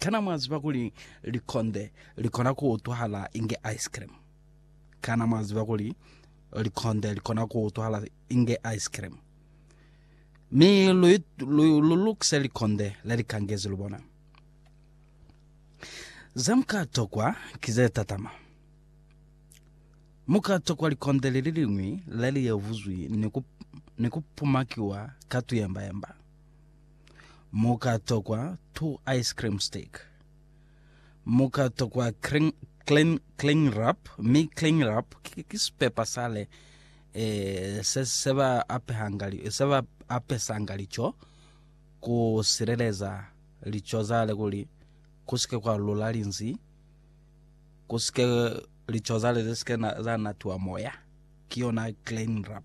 Kana mwa ziba kuli likonde li kona ku utwahala inge ice cream? Kana mwa ziba kuli likonde li kona ku utwahala inge ice cream? Mi lu, lu, lu lukise likonde le li kangezi, lu bona. Ze mu ka tokwa ki ze tatama. Mu ka tokwa likonde li li liñwi le li yevuzwi ni ku, ni ku pumakiwa ka tuyembayemba. Mu ka tokwa two ice cream stick. Mu ka tokwa cling, cling, cling wrap, mi cling wrap ki, ki sipepa sale eh, se, se ba apehanga li- se ba apesanga lico ku sileleza lico zale kuli ku sike kwa lula linzi ku sike lico zale ze sike na, za natiwa moya ki yona cling wrap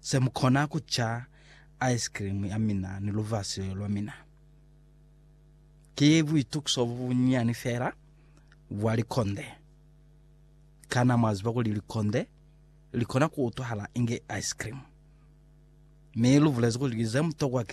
Se mu kona ku ca ice cream ya mina ni lubasi lwa mina. Ki buitukiso bo bunyinyani fela bwa likonde. Kana mwa ziba kuli likonde li kona ku utwahala inge ice cream? Mi lu bulezi kuli ze mutokwa ki ze.